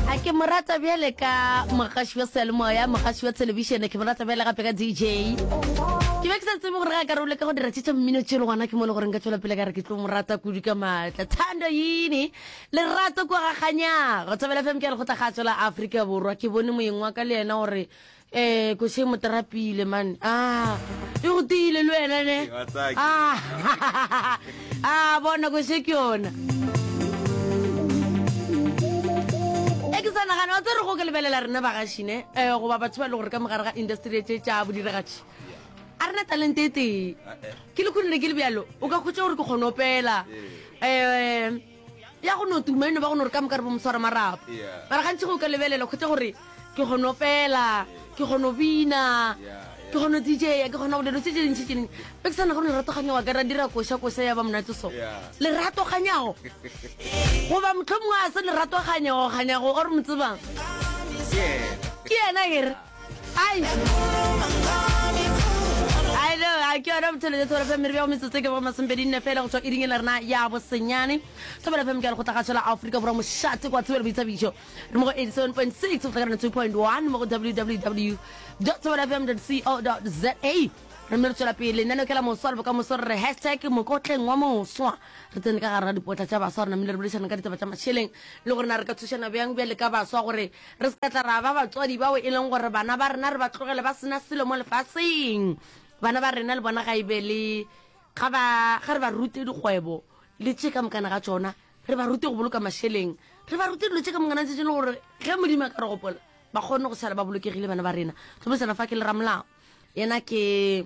a ke mo rata bjale ka mogaši wa seyalemoya mogaši wa thelebišene ke mo rata bjale gape ka dj ke be ke sa tsebe gore ga ka role ka go dira tše tša mmino tšelo gona ke mo le gore nka tswela pele ka re ke tlo mo rata kudu ka maatla thando yini lerato kwa gakganyago thobela fm ke a le go tla ga tswela aforika borwa ke bone moyeng wa ka le yena gore Eh koshe mo trapile man. Ah, e go tiile le wena ne. Ah. Ah, bona koshe ke yona. E ke sa nagana wa tse re go ke lebelela rena bagashi ne. Eh goba batho ba le gore ka mogare ga industry e tše tša bodiragatši. A rena talent e tee. Ke le khonile ke le bjalo. O ka khotša gore ke kgone opela. Eh ya go no tuma eno ba go no re ka moka re bo moswara marapo mara gantši go ka lebelela kgotla gore ke kgono pela ke kgono bina ke kgono dija ke kgona go dilo tse tse dintšhi tse dingwe be ke sana gore leratoganya wa ka ra dira koša koša ya ba monate so leratoganyago goba motlho mongwe a se leratoganyago ganyago or mo tsebang ke yena ere Ai. Ai lo a ke yona bothelete thobela fm re bja go metsotso ke bogo masompedi nne fela go tšwa iring e le rena ya bosenyane thobela fm ke ya lekgotla gatsho la aforika borwa mošate kwa thobela boithabišo re mo go 87.6 go tlhakarana 2.1 mo go www thobela fm co za re mme re tswela pele lenaneo ke la moswa le bokamoso re re hashtag mokotleng wa moswa re tsene ka gare ga dipotla tša baswa rena mmile re boledišana ka ditaba tša mašeleng le gore na re ka thušana bjang bjale ka baswa gore Re se ka tla ra ba batswadi bao e leng gore bana ba rena re ba tlogele ba sena selo mo lefaseng. Bana ba rena le bona ga e be le ga ba ga re ba rute dikgwebo le tše ka mokana ga tšona, re ba rute go boloka mašeleng, re ba rute dilo tše ka mokana tše tše le gore ge Modimo a ka re gopola ba kgone go sala ba bolokegile bana ba rena. Tlhomesana fa ke le ramolao yena ke.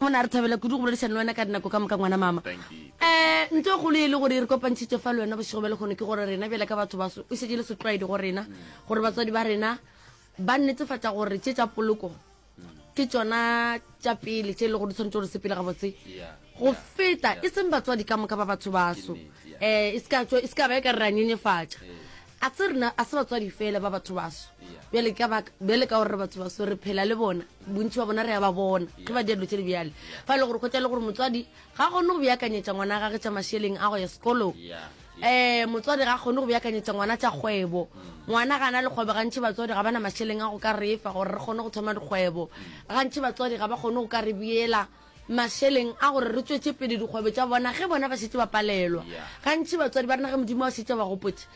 Monna, re thabela kudu go boledišana le wena ka dinako ka moka, ngwana mama. Um, ntho e kgolo ye e le gore e re kopantšhitše fa le wena bošego bja lekgono ke gore rena bjale ka batho baso e šetše le setlwaedi go rena gore batswadi ba rena ba netefatša gore tše tša poloko ke tšona tša pele tše e le gore di tshwanetse gore sepele gabotse go feta e seng batswadi ka moka ba batho baso um e se ka ba e ka re ra nyenyefatša A se rena a se batswadi fela ba batho baso bjale ka baka bjale ka gore re batho baso re phela le bona bontši ba bona re ya ba bona ge ba diadilo tše di bjale fa e le gore go tša le gore motswadi ga kgone go beakanyetša ngwana gage tša mašeleng a go ya sekolong um motswadi ga kgone go beakanyetša ngwana tša kgwebo mm. ngwana ga na le kgwebo gantši batswadi ga ba na mašeleng a go ka re fa gore re kgone go thoma dikgwebo mm. gantši batswadi ga ba kgone go ka re beela mašeleng a gore re tšwetše pele dikgwebo tša bona ge bona ba šetše ba palelwa. Gantši batswadi ba rena ge Modimo a šetše a ba gopotše,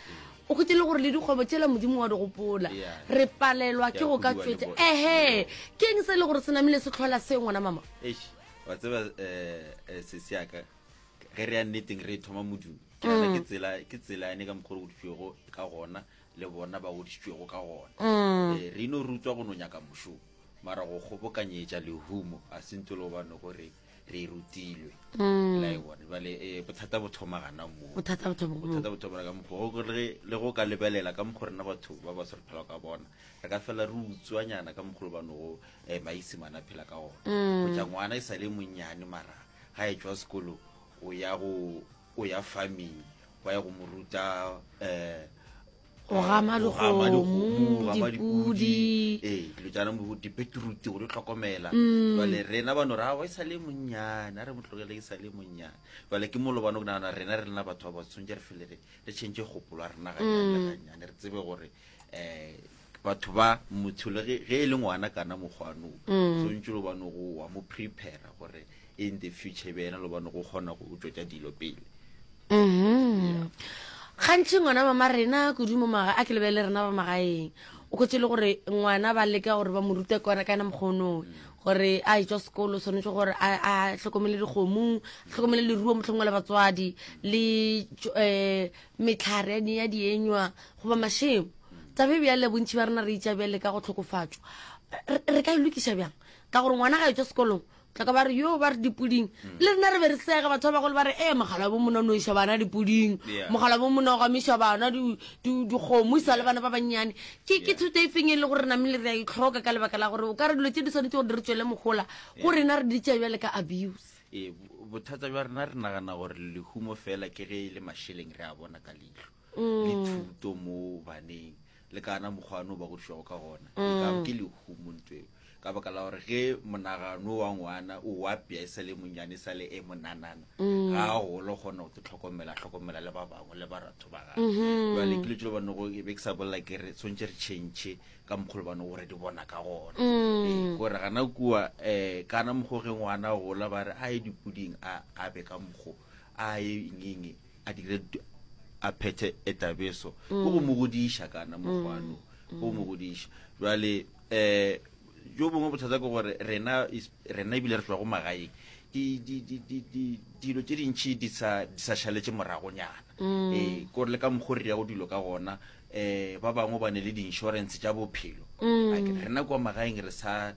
o hwetše e le gore le dikgwebo tšela Modimo wa di gopola, re palelwa ke go ka tšwetša. Ehe, ke eng se e le gore se namile se tlhola se, ngwana mama? Eish, wa tseba um sesi yaka ge re ya nneteng re e thoma modumo ke nana mm. ke tsela ke tsela yane ka mokgwa o godisitswego ka gona le bona ba godisitswego ka gona mm. eh, re ino rutswa go no nyaka mošomo mara go kgobokanyetša lehumo a se ntolo gobane gore re e rutilwe mm. la e bone bale eh, bothata bo thoma gana moo bothata bo thoma bothata bo thoma ka mokgo go re le go ka lebelela ka mokgo rena batho ba ba sore phela ka bona re ka fela re utswanyana ka mokgo ba no eh maisi mana phela ka ona mm. go ja ngwana e sale monyane mara ga e tswa sekolo o ya go o ya farming ba ya go moruta eh go gama legomo dipudi ee dilo jaana mo dipetrute gore o tlhokomela mm. jale rena bano ra wa e sa le monnyane a re motlogele e sa le monnyane jale ke molo bano ke nagana rena re lena batho ba ba tshwanetse re fele re re change gopolo a rena ganyaneganyane mm. re tsebe gore um batho ba motho le ge e le ngwana kana mokgwanong mm. tshwanetse lo bano go wa mo prepare gore in the future be yena lo bone go kgona go tšwetša dilo pele mm-hmm. gantši ngwana ba ma rena kudu mo maga a ke lebele rena ba magaeng o khotse le gore ngwana ba leka gore ba mo rute kona ka ena mokgonong gore a etswa sekolo tshwanetse gore a tlhokomele dikgomo a tlhokomele leruo motlhongwe le batswadi le um metlhare ya dienywa goba mashemo tsabe bjale bontšhi ba rena re itša bjale ka go tlhokofatswa re ka e lokiša bjang ka gore ngwana ga etswa sekolong tlaka ba re yo ba re dipuding mm. le rena re be re sega batho ba bagolo ba re ee mogala bo mona o noisa bana dipuding mogala bo mona o gamisa bana dikgomo isa le bana ba bannyane ke ke thuto e feng e le gore re namele re a itlhoka ka lebaka la gore o ka re dilo tse di tshwanetse gore di re tswele mogola go rena re di tšea bjale ka abuse ee bothata jwa rena re nagana gore lehumo fela ke ge e le mašeleng re a bona ka leitlho mm. le thuto mo baneng le kana mokgwa ano ba godišwago ka gona e mm. ka ke lehumo ntweo ka baka la gore ge monagano wa ngwana o wapea e sa le monnyane e sa le e monanana mm. ga a golo kgona go te tlhokomela tlhokomela le ba bangwe le ba ratho ba gage mm-hmm. jale ke letselo bane go e be ke sa bolela ke re tshwanetse re change ka mokgolo bane gore di bona ka gona mm. gore gana kua um kana mokgwa ge ngwana gola ba re a ye dipoding a be ka mokgwa a ye ngenge a dire a phethe etabeso mm. ke go mo godiša kana mokgwano mm. go mo godiša jwale eh jo bongwe bothata ke gore rena rena ebile re tloa go magaeng dilo tse dintšhi di sa šaletse moragonyana mm. ee ko re le ka mokgwa re ya go dilo ka gona um ba bangwe ba ne le di-insurance tša bophelo rena kwa magaeng re sa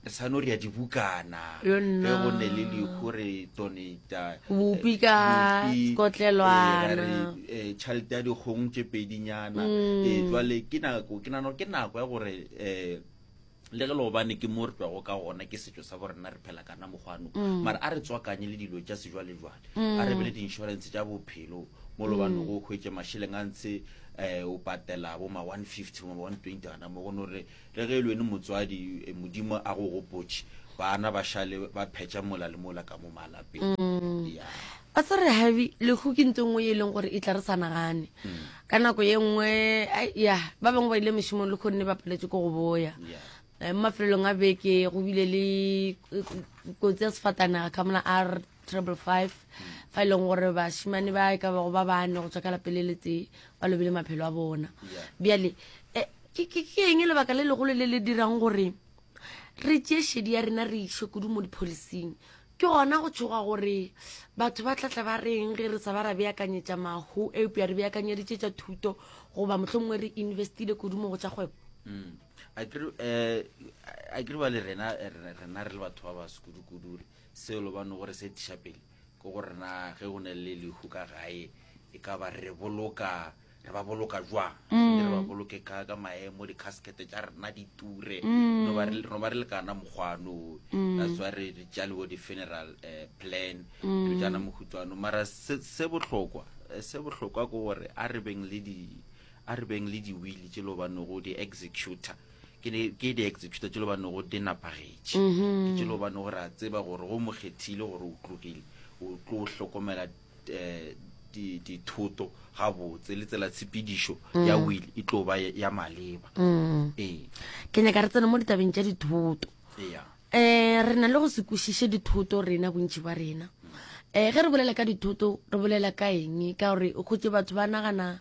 sa no ria dibukana ge go ne le lehu re donata bopi ka kotlelwana tšhelete ya dikgong tše pedinyana jale ke nako ke nano ke nako ya gore um le ge leobane ke mo re twago ka gona ke setšo sa borena re phela kana mokgwano mm. mara a re tswakanye le dilo tša sejwalejwale mm. a re be le di-insurance tša bophelo mo lobane mm. go hwetše mašeleng a ntshe um o patela bo ma one fifty ma one twenty gana mo go no re Le ge e le wena motswadi, Modimo a go gopotše. Bana ba šale ba phetša mola le mola ka mo malapeng. Yeah. Pastor Rehabi, lehu ke ntho e nngwe ye e leng gore e tla re sa nagane. Ka nako ye nngwe, ai, ya, ba bangwe ba ile mešomong le kgonne ba paletše ko go boya. Yeah. Eh, mo mafelelong a beke go bile le eh, kotsi ya sefatanaga ka mona a triple five fa e leng gore bashimane ba e ka bago ba bane go tswa ka lapele le tee ba lobile maphelo a bona bjale eh, ke eng lebaka le legolo le le dirang gore re tšee shedi ya rena re išwe kudu mo dipholising ke gona go tshoga gore batho ba tlatla ba reng ge re sa ba ra beakanyetša mahu eupša re beakanyeditše tša thuto goba motlho mongwe re investile kudu mo go tša kgwebo mm. a kere eh, ba le rena eh, rena re le batho ba ba sekudukudu re Seo lo bone gore se tiša pele ke gore na ge go ne le lehu ka gae e ka ba re boloka re ba boloka jwang mm. re ba boloke ka ka maemo di-casket tša rena di ture mm. no ba re le kana mokgwano mm. that's why re jalewo di-funeral eh, plan re jana mohutswano mara se bohlokwa eh, se bohlokwa ke gore a re beng le di a re beng le diwili tse le banego di-executor ke ne ke di executa tšelo ba nego di napagetše ke tšelo ba nego re a tseba gore go mokgethile gore o tlogile o tlo o hlokomela eh, di- dithoto gabotse le tsela tshepedišo ya will e tlo ba ya maleba ee ke nyaka re tsena mo ditabeng tša dithoto eya um re na le go se kwešiše dithoto rena bontši ba rena um ge re bolela ka dithoto re bolela ka eng ka gore o kgotse batho ba nagana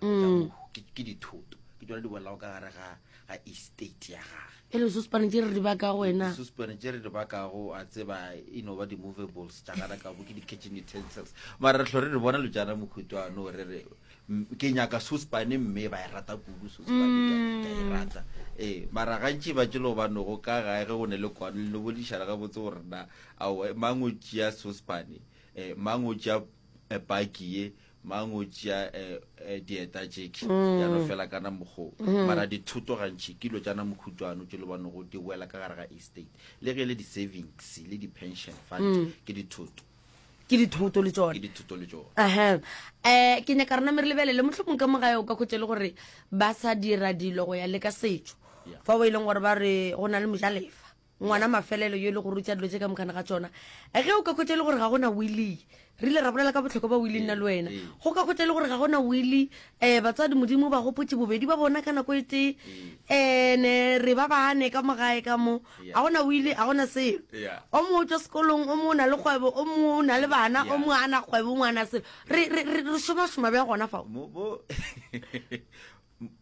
mm. ke dithoto ke tsone di bolelago ka gare ga ga estate ya gage e le sospane tse re di bakago wena sospane tse re di bakago a tseba e no ba di-movables tša gana kabo ke di-catching utensils mara re tlho re re bona lojana mokhutoano re re ke nyaka sospane mme ba e rata kudu sospane ka e mm. rata ee mara gantši ba tšelo ba nogo ka gae ge go ne le kwano le no bodišana ga botse gore na aowa mang o tšea sospane um mang o tšea eh, paki ye mang o tšea um dieta tšeki ya no fela kana mokgoo mara dithoto gantšhi ke dilo tša na mokhutšwano tše le banego di wela ka gare ga estate le ge le di-savings le di-pension fund ke dithoto ke dithoto le tsone ke dithoto le tsone aha eh ke nyaka rena mere lebelele motlho mongwe ka mo gae o ka khotse le gore ba sa dira dilo go ya le ka setso fa o e leng gore ba re go na le mojalefa Ngwana mafelelo yo e le go rutša dilo tše ka mokana ga tšona. Ge o ka khwetša e le gore ga gona Willie, re ile ra bolela ka bohlokwa ba Willie nna le wena. Go ka khwetša e le gore ga gona Willie, um batswadi Modimo o ba gopotše bobedi ba bona ka nako e tee. Um ne re ba bane ka mo gae ka mo. Ga gona Willie, ga gona selo. O mongwe o tšwa sekolong, o mongwe o na le kgwebo, o mongwe o na le bana, o mongwe a na kgwebo, o mongwe a na selo. Re, re, re, re šomašoma bjang gona fao?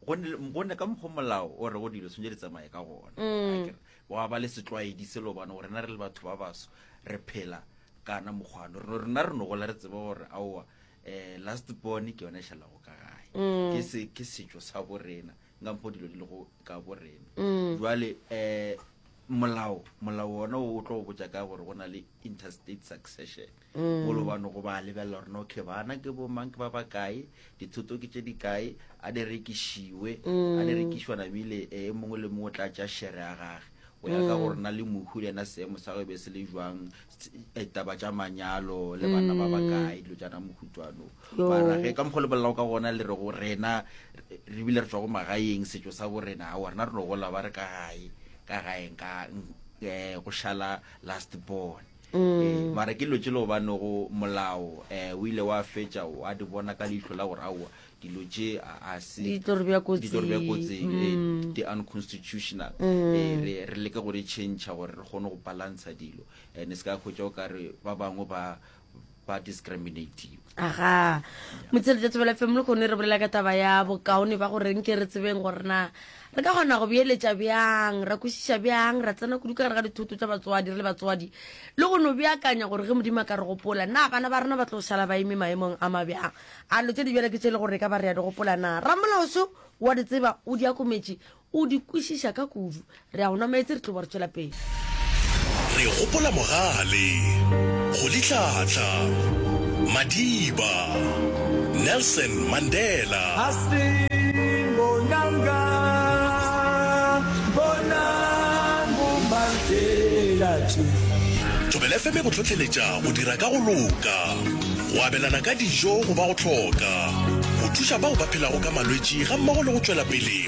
gonne ka mokgwa molao o re go dilo tshwanetse di tsamaye ka gona mm. wa ba le setlwaedi selo bane gore na re le batho ba baso re phela kana mokgwano reno rena re nogola re tseba gore aowa um last born ke yone e šhalago ka gae mm. ke setšo sa borena nka mokgwa dilo di lego ka borena mm. jale um molao molao ona o tlo go botja ka gore go na le interstate succession mm. golo ba no go ba lebelela gore okay bana ke bo mang ke ba ba kae dithoto ke tse di kae a di rekišiwe a di mm. rekišwa namile e mongwe le mongwe o tla tša shere ya gage go ya ka mm. gore na le mohu le ena seemo sa go be se le jwang e, taba tša manyalo le bana ba ba kae dilo tša na mohutswano barage ka mokgwa lebelelago ka gona le re go rena re bile re tswa go magaeng setso sa bo rena ga rena re no gola ba re ka gae ka gaeng ka um go šala last born mm. e, mara ke dilo tse le gobanego molao um o ile wa fetša wa di bona ka leihlo la gore aowa dilo tše a seditlo re bja kotsing mm. di unconstitutional mm. re leke go di tšhentšha gore re kgone go balantsha dilo and se ka kgwetša o kare ba bangwe ba ba discriminative aga motsele tsa tsebela fm le kgone re bolela ka taba ya bokaone ba gore nke re tsebeng gore na re ka kgona go beeletša bjang ra kwešiša bjang ra tsena kudu ka gare ga dithoto tša batswadi re le batswadi le go no beakanya gore ge modimo a ka re gopola na bana ba rena ba tlo šala ba eme maemong a mabjang a lo tse di bjale ke tše e le gore e ka ba re ya di gopola na ramolaoso wa di tseba o di akometše O di kwešiša ka kudu. Re a go nwa meetse, re tlo ba re tšwela pele. Re gopola mogale, go litlhatla, Madiba, Nelson Mandela. Hastin bonanga bonang bo Mandela tše. Thobela FM e go hlohleletša go dira ka go loka, go abelana ka dijo go ba go hloka, go thuša bao ba phelago ka malwetši gammogo le go tšwela pele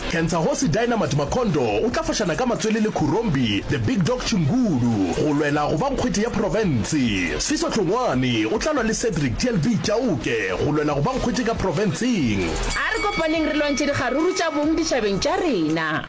Kentsagosi Dynamite Makhondo o tla fošana ka matswele le Khurombi The Big Dog Chingulu go lwela go ba nkgwete ya profense. Sifiso Hlongwane o tla lwa le Cedric TLB Chauke go lwela go ba nkgwete ka profenseng. A re kopaneng re lwantšhe dikgaruru tša bong ditšhabeng tša rena.